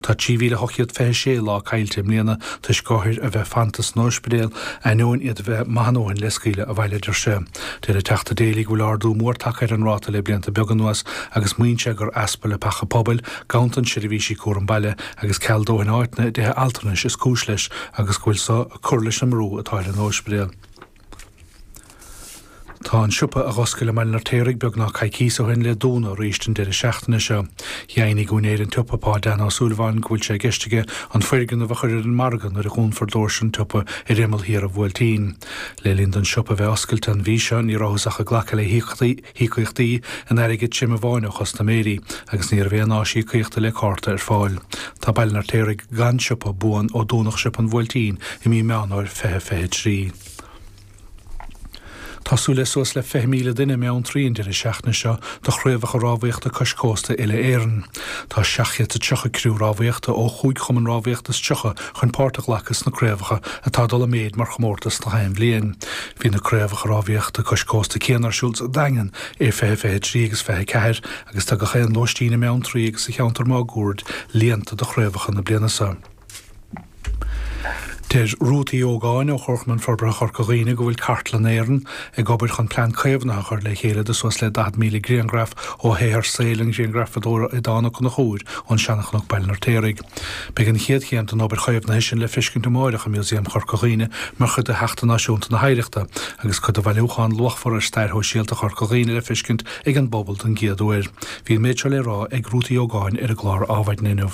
Tá 3,826 lá caillte i mbliana toisc othair a bheith fanta san óispidéal, ainneoin iad a bheith maith a ndóthain le scaoileadh abhaile, a deir sé. Deir an Teachta Daly go bhfuil ardú mór tagtha ar an ráta le blianta beaga anuas agus maíonn sé gur easpa leapacha pobail, ganntan seirbhísí cúram baile agus ceal dóthain áiteanna i dtithe altranais is cúis leis agus go bhfuil seo ag cur leis an mbrú atá ar an óispidéal. Tá an siopa a dh'oscail i mBaile an Fheirtéaraigh beagnách coicíos ó shin le dúnadh arís an deireadh seachtaine seo. Dheimhnigh úinéir an tsiopa, Pá Dan Ó Súilleabháin, go bhfuil sé i gceist aige an foirgneamh a chur ar an margadh nuair a dhúnfar doirse an tsiopa ar imeall thiar an Bhuailtín. Le linn don siopa bheith oscailte an mhí seo ní rabhthas ach ag glacadh le híocaíochtaí híocaíochtaí in airgead tirim amháin ó chustaiméirí agus ní raibh aon áis íocaíochta le cárta ar fáil. Tá Baile an Fheirtéaraigh gan siopa buan ó dúnadh Siopa an Bhuailtín i mí Meán Fhómhair 2023. Tá súil le suas le 20,000 duine i mBeanntraí an deireadh seachtaine seo do chraobhacha rámhaíochta cois cósta Uile Éireann. Tá 730 criú rámhaíochta ó chúig chumann rámhaíochta is tríocha chun páirt a ghlacadh sna craobhacha atá ag dul i méid mar chomórtas gach aon bhliain. Bhí na craobhacha rámhaíochta cois cósta céanna ar siúl sa Daingean i 2023 agus 24 agus tá gach aon lóistín i mBeanntraí agus sa cheantar máguaird líonta do chraobhacha na bliana seo. Deir Ruth Uí Ógáin ó Chomharchumann Forbartha Chorca Dhuibhne go bhfuil Cartlann Éireann ag obair chun plean caomhnaithe a chur le chéile do suas le 40,000 grianghraf ó shaothar saoil an ghrianghrafadóra Aodán Ó Conchúir ón Seanachnoc, Baile an Fheirtéaraigh. Beidh an chéad chéim den obair chaomhnaithe sin le feiscint amárach i Músaem Chorca Dhuibhne mar chuid de Sheachtain Náisiúnta na hOidhreachta agus cuid de bhailiúchán luachmhar ar stair shóisialta Chorca Dhuibhne le feiscint ag an bpobal don gcéad uair. Bhí an méid seo le rá ag Ruth Uí Ógáin ar an gclár Adhmhaidin inniu.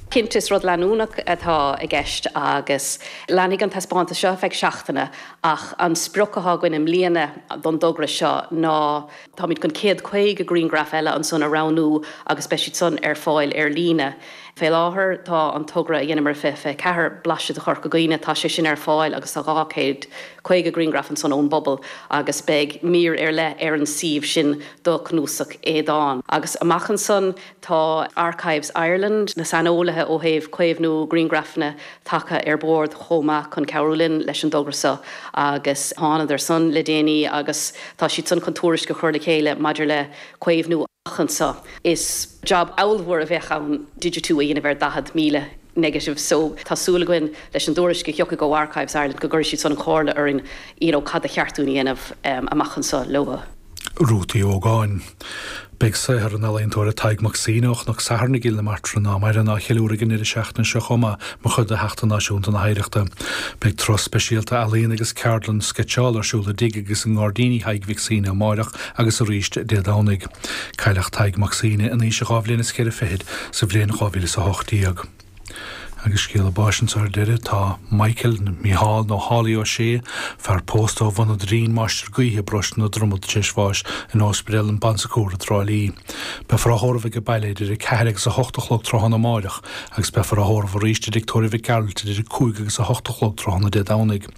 Cinnte is rud leanúnach atá i gceist agus leanfaidh an taispeántas seo ar feadh seachtaine ach an sprioc atá againn i mbliana don dtogra seo ná Táimid chun 150 grianghraf eile ansan a roghnú agus beidh siad san ar fáil ar líne. Fé láthair tá an togra a dheineamar i 2024 Blaiseadh de Chorca Dhuibhne, tá sé sin ar fáil agus tá 250 grianghraf ansan ón bpobal agus beidh mír ar leith ar an suíomh sin do cnuasach Aodán. Agus amach ansan Tá Archives Ireland, na saineolaithe ó thaobh caomhnú grianghrafanna, tagtha ar bord chomh maith chun cabhrú linn leis an dtogra seo agus thánadar san le déanaí agus tá siad san chun tuairisc a chur le chéile maidir le caomhnú amach anseo. Is job ábhalmhór a bheadh ann digitiú a dhéanamh ar 40,000 negative so tá súil againn leis an dtuairisc a thiocfaidh ó Archives Ireland go gcuirfidh siad san an chomhairle orainn you know cad ba cheart dúinn a dhéanamh amach anseo leo. Ruth Uí Ógáin. Beidh saothar an ealaíontóra Tadhg Mac Suibhne ó Chnoc Sathairn i gCill na Martra ná maireann á cheiliúradh ag an ndeireadh seachtaine seo chomh maith mar chuid de Sheachtain Náisiúnta na hOidhreachta. Beidh tráth speisialta ealaíon agus ceardlann sceitseála ar siúl i dtigh agus i ngairdíní Thaidhg Mhic Suibhne amáireach agus arís Dé Domhnaigh. Cailleadh Tadhg Mac Suibhne in aois a dhá bhliain is cheithre fichid sa bhliain 2018. Agus scéala báis anseo ar deireadh, tá Michael, Mícheál nó Haulie Ó Sé, fear pósta ó Bhun an Doirín, Máistir Gaoithe, paróiste na Dromad tar éis bháis in óspaidéal an Bon Secours i dTrá Lí. Beifear á thórramh aige baile idir 4 agus 8 a chlog tráthnóna amáireach agus beifear á thórramh arís i dtigh tórraimh Mhic Gearailt idir 5 agus 8 a chlog tráthnóna Dé Domhnaigh.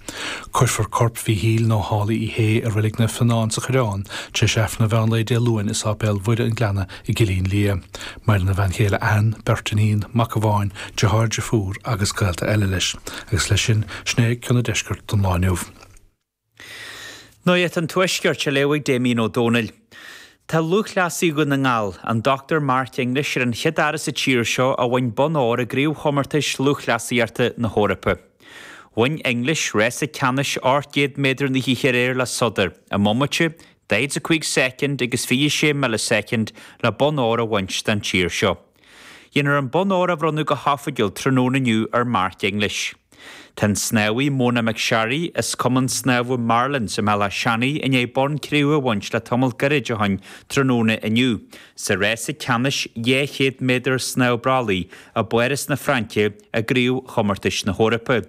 Cuirfear corp Mhíchíl nó Haulie Uí Shé i Reilig Naomh Fionán sa Choireán tar éis Aifreann an mheán lae Dé Luain i Sáipéal Mhuire an Ghleanna i gCillín Liath, Maireann a bhean chéile Ann, beirt iníon, mac amháin, deartháir, deirfiúr agus gaolta eile leis, agus leis sin sin é cion an Deiscirt don lá inniu. Nuacht an Tuaiscirt á léamh ag Damien Ó Dónaill. Tá lúthchleasaí Dhún na nGall, an Dr Mark English ar an chéad fhear sa tír seo a bhain bonn óir i gcraobhchomórtais lúthchleasaíochta na hEorpa. Bhain English rása ceannais 800 méadar na hoíche aréir le sodar, i mbomaite, 45 soicind agus 26 milleasoicind le bonn óir a bhaint den tír seo. Dhéanfar an bonn óir a bhronnadh go hoifigiúil tráthnóna inniu ar Mark English. Tá an snámhaí Mona McSharry as Cumann Snámha Marlins i mBéal Átha Seanaidh i ndiaidh bonn cré-umha a bhaint le tamall gairid ó shin tráthnóna inniu sa rása ceannais 200 méadar snámh brollaigh i bPáras na Fraince i gCraobhchomórtais na hEorpa.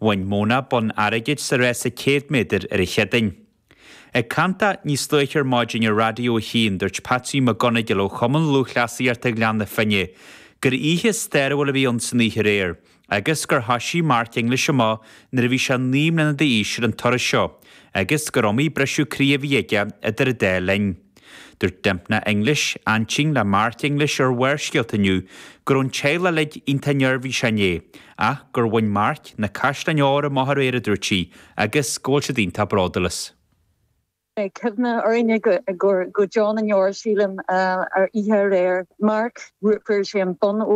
Bhain Mona bonn airgid sa rása 100 méadar ar an Chéadaoin. Ag caint dó níos luaithe ar maidin ar Raidió a hAon, dúirt Patsy McGonagle ó Chumann Lúthchleasaíochta Ghleann na Finne gur oíche stairiúil a bhí ann san oíche aréir agus gur thoisigh Mark English amach nuair a bhí sé naoi mbliana d'aois ar an turas seo agus gur iomaí briseadh croí a bhí aige idir an dá linn. Dúirt Dympna English, aintín le Mark English ar Bharrscéalta inniu go raibh an teaghlach uilig iontach neirbhíseach inné ach gur bhain Mark na caisleáin óir amach aréir a dúirt sí, Agus go bhfuil siad iontach bródúil as. Beidh cuimhne orainne go deo na ndeor, sílim, ar oíche aréir. Mark, fuair sé an bonn óir.